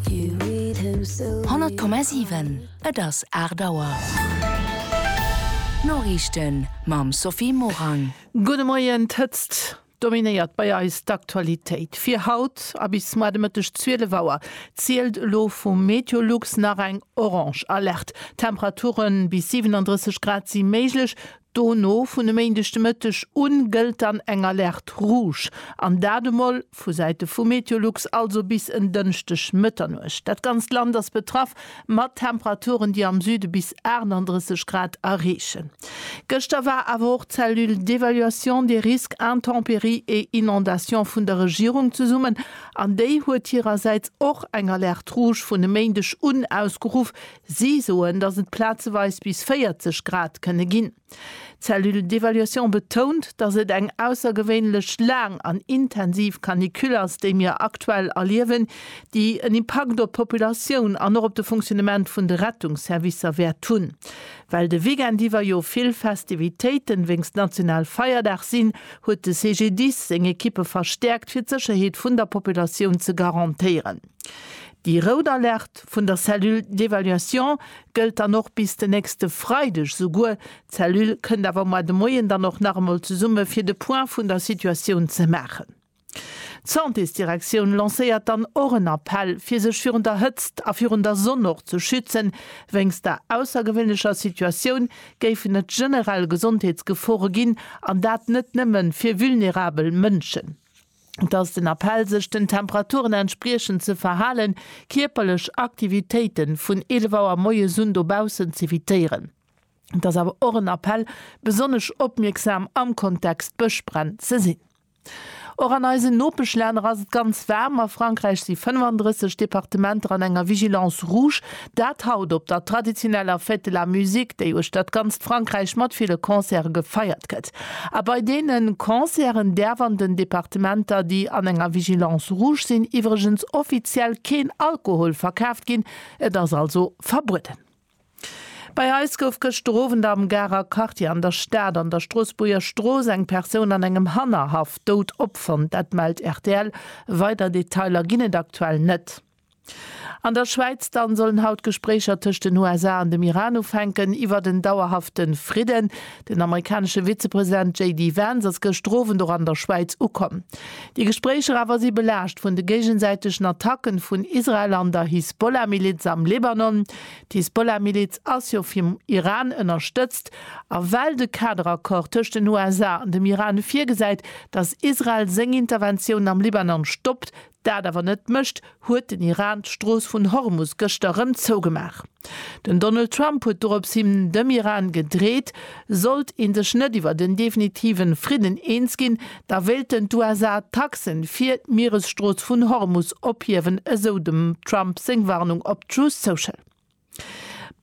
100,7 Et ass 8 Auer. D'Noriichten mam Sophie Morang. Gudde Moien. D'Hëtzt dominéiert bei eis d'Aktualitéit fir haut a bis mar de Mëtteg 12 Auer zielt elo vu Meteolux nach eng Orange Alerte. Temperature bis 37 Grad si méiglech, Dono vun e Méindeg de Mëtteg u gëllt dann eng Alerte rouge, an dat emol vu Säite vu Meteolux, also bis en Dënschdeg Mëtternuecht. Dat ganzt Land ass betraff, mat Temperaturen, déi am Süde bis 38 Grad erreechen. Gëschter war awer och d'Cellule d'évaluation des risques intempéries et inondations vun der Regierung zesummen, an déi huet hirersäits och eng Alerte rouge vun e Méindeg un ausgeruff, Si soen, datt et plazeweis bis 40 Grad kënne ginn. D'Cellule d'évaluation betount, datt et eng aussergewéinlech laang an intensiv Canicule ass, déi mir aktuell erliewen, déi en Impakt op d'Populatioun an och op de Fonctionnement vun de Rettungsservicer wäert hunn. Well de Weekend iwwer jo vill Festivitéiten wéinst Nationalfeierdag sinn, huet de CGDIS seng Ekippe verstäerkt, fir d'Sécherheet vun der Populatioun ze garantéieren. Déi rout Alerte vun der Cellule d'évaluation gëllt dann och bis den nächste Freideg souguer. D'Cellule kënnt awer mar de Moien dann och nach emol zesumme fir de Point vun der Situatioun ze maachen. D'Santésdirektioun lancéiert dann och en Appell, fir sech virun der Hëtzt a virun der Sonn och ze schützen. Wéinst der aussergewéinlecher Situatioun géifen et generell Gesondheetsgefore ginn, an dat net nëmme fir vulnerabel Mënschen. Et ass den Appell sech den Temperaturen entspriechend ze verhalen, kierperlech Aktivitéiten vun 11 Auer moies un dobaussen z'evitéieren. Et ass awer och en Appell besonnesch opmierksam am Kontext Bëschbränn ze sinn. Och an eisen Nopeschlänner ass et ganz waarm. A Frankräich si 35 Departementer an enger Vigilance rouge. Dat haut op der traditioneller Fête de la Musique, déi uechter d'ganzt Frankräich mat ville Concerte gefeiert gëtt. A bei deene Concerten däerf an den Departementer, déi an enger Vigilance rouge sinn, iwwregens offiziell keen Alkohol verkaaft ginn. Et ass also verbueden. Bei eis gouf gëschter Owend am Garer Quartier an der Stad an der Stroossbuerger Strooss eng Persoun an engem Hannerhaff dout opfonnt. Dat mellt rtl. Weider Detailer ginn et aktuell net. An der Schwäiz dann sollen haut d'Gespréicher tëscht den USA an dem Iran ufänken iwwert en dauerhafte Fridden. Den amerikanesche Vizepresident JD Vance ass gëschter Owend och an der Schwäiz ukomm. Déi Gespréicher awer si belaascht vun de géigesäitegen Attacken vun Israel an der Hisbollah-Miliz am Libanon. D'Hisbollah-Miliz ass jo vum Iran ënnerstëtzt. A well de Kaderaccord tëscht den USA an dem Iran virgesäit, datt Israel seng Interventiounen am Libanon stoppt, dat awer net mécht, huet den Iran d'Strooss vun Hormus gëschter erëm zougemaach. Den Donald Trump huet dorops hinn dem Iran gedreet, sollt ee sech net iwwert en definitive Fridden eens ginn, da wéilten d'USA d'Taxe fir d'Mieresstrooss vun Hormus ophiewen, esou dem Trump seng Warnung op Truth Social.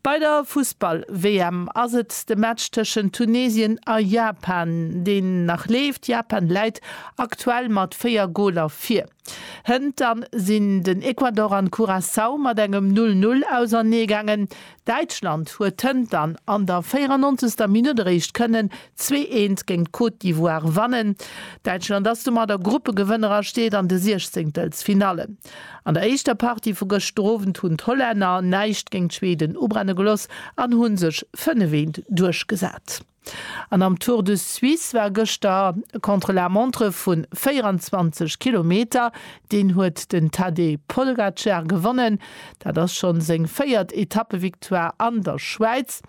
Bei der Fussball-WM ass et de Match tëschent Tunesien a Japan, deen nach leeft. Japan läit aktuell mat 4 Goler vir. Hënter sinn den Ecuador an Curaçao mat engem 0, 0 ausernee gaangen. Däitschland huet hënter an der 94. Minutt eréischt kënnen 2, 1 géint d'Côte d'Ivoire wannen. Däitschland ass domat a Gruppegewënner a steet an de Siechzéngtelsfinallen. An der éischter Partie vu gëschter Owend hunn d'Hollänner näischt géint d'Schweden ubrenne geloss an hu sech 5 Eent duerchgesat. An am Tour de Suisse war gëschter e Contre-la-montre vu 24 Kilometer. Deen huet den Tadej Polgacar gewonnen. Dat ass schonn seng véiert Etappevictoire an der Schwäiz,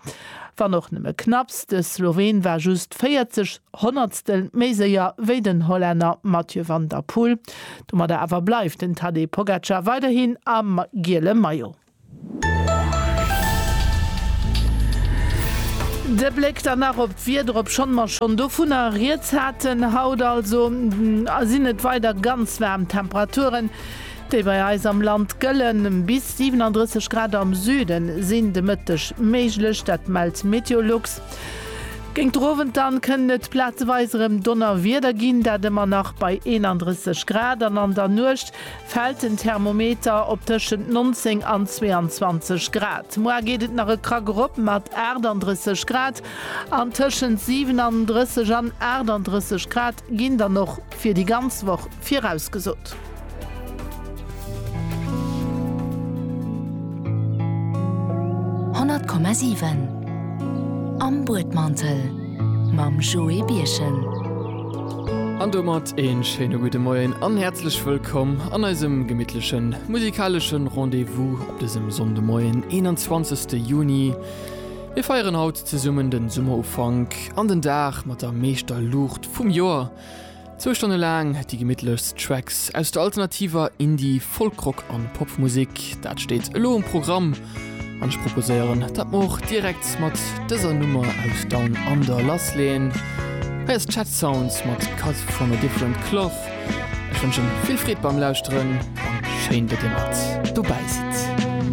wann och nëmme knapps. De Sloween war just 40 Honnertstel méi séier wéi den Hollänner Mathieu van der Poel. Domadder awer bleift den Tadej Pogacar weiderhin am giele Maillot. De Bléck dann nach op d'Wieder, obschonn mer schonn dovunner rieds haten. Haut also sinn et weider ganz waarm Temperaturen, déi bei eis am Land gëllen. Bis 37 Grad am Süde sinn de Mëtteg méiglech, dat mellt Meteolux. Géint den Owend dann kënnt et plazeweis erëm Donnerwieder ginn, dat ëmmer nach bei 31 Grad an an der Nuecht fält den Thermometer op tëschent 19 an 22 Grad. Muar geet et nach e Krack erop mat 38 Grad an tëschent 37 an 38 Grad ginn dann och fir déi ganz Woch virausgesot. Honnert Komma siwen Am Buedmantel mam Joé Birchen. An domat een schéine gudde Moien an häerzlech wëllkomm an eisem gemittlechen musikaleschen Rendez-vous op dësem Sonndemoien 21 Juni. Mir feieren haut zesummen den Summerufank an den Dag mat der meeschter Luucht vum Joer. Zwou Stonne laang déi gemittlechst Tracks aus der alternativer Indie-, Folk-Rock an Popmusek, dat steet elo um Programm an ech proposéieren dat mer och direkt mat dëser Nummer aus Down Under lassleeën. Hei ass Chet Sounds mat Cut From A Different Cloth. Ech wënschen vill Freed beim Lauschteren an schéin datt dir mat dobäi sidd.